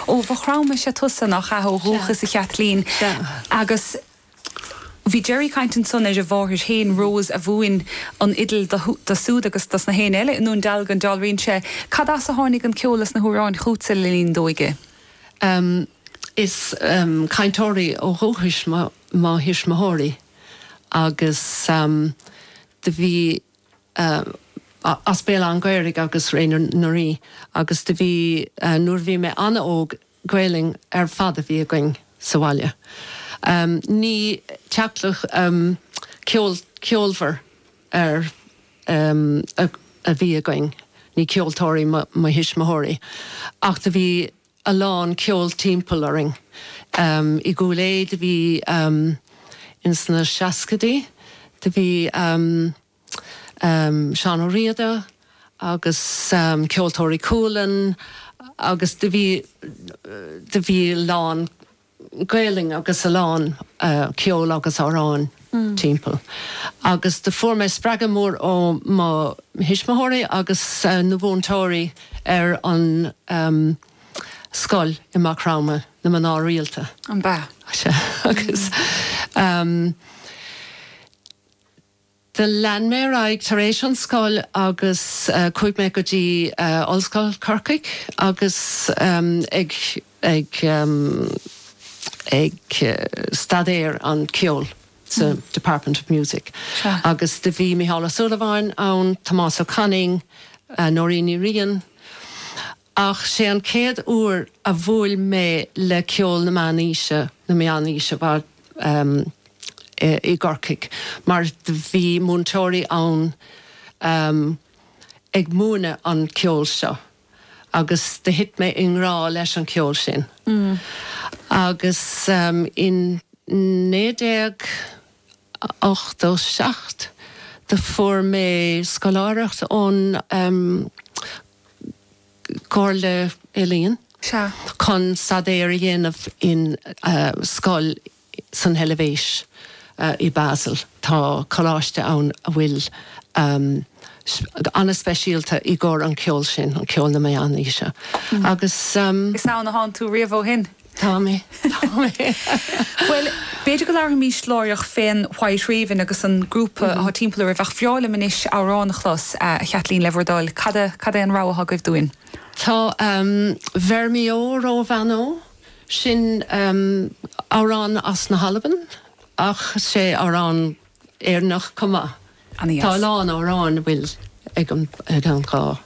Ó Mhaigh Chromtha is ea tusa, nach ea, ó dhúchas, a Chaitlín. Agus bhí Gerry ag caint ansan ar a mháthair féin, Rose, a mhúin an fhidil do súd agus dos nach éinne eile i nDún Dealgan. Dealraíonn sé, cad as a tháinig an ceol is na hamhráin chútsa le linn d'óige? Is cainteoirí ó dhúchais mo thuismitheoirí agus do bhí ehm as Béal Átha an Ghaorthaidh agus Ré na nDoirí agus do bhí eh nuair a bhí mé an-óg Gaolainn ar fad a bhí againn sa bhaile. Ehm ní teaghlach ehm ceol ceolmhar ar ehm a bhí againn, ní ceoltóirí mo mo thuismitheoirí ach do bhí a lán ceol timpeall orainn. Ehm i gCúil Aodha do bhí ehm ins na seascaidí do bhí ehm. Seán Ó Riada agus Ceoltóirí Cualann agus do bhí do bhí a lán Gaelainn agus a lán ceol agus amhráin timpeall agus do fuair mé spreagadh mór ó mo thuismitheoirí agus na mhúinteoirí ar an scoil i Maigh Chromtha, na mná rialta. Ab ea. Sea, agus. Do lean mé ar aghaidh tar éis an scoil agus chuaigh mé go dtí Ollscoil Corcaigh agus ag ag ag staidéar an ceol sa Department of Music agus do bhí Mícheál Ó Súilleabháin ann, Tomás Ó Canainn, Nóirín Ní Riain. Ach sé an chéad uair a bhuail mé le ceol na meánaoise, na meánaoise, bhal, em, i gCorcaigh, mar do bhí múinteoirí ann, em, ag múineadh an ceol seo agus do thit mé i ngrá leis an cheol sin. Agus, em, in naoi déag ochtó seacht do fuair mé scoláireacht ón, em, gComhairle Ealaíon. Sea. chun staidéar a dhéanamh in scoil san Eilbhéis, i Basel. Tá coláiste ann a bhfuil ana-speisialta i gcóir an cheoil sin, an ceol na Meánaoise, agus. Is ann atánn tú riamh ó shin? Tá mé. Tá mé. Bhuel, b'fhéidir go labharfaimís láithreach fén White Raven agus an grúpa atá timpeall oraibh, ach bhreá liom anois amhrán a chlos, a Chaitlín, le bhur dtoil. Cad a, cad é an rogha atá agaibh dúinn? Tá Bheir mí ó ró bhan ó, sin amhrán as na hAlban ach sé amhrán. Éireannach chomh maith. Tá a lán amhráin a bhfuil ag an ag an dhá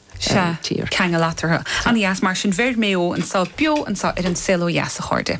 tír ceangal eatarthu. An ES, Mar sin, beir Mayo anseo beo anseo ar An Saol Ó Dheas, a chairde.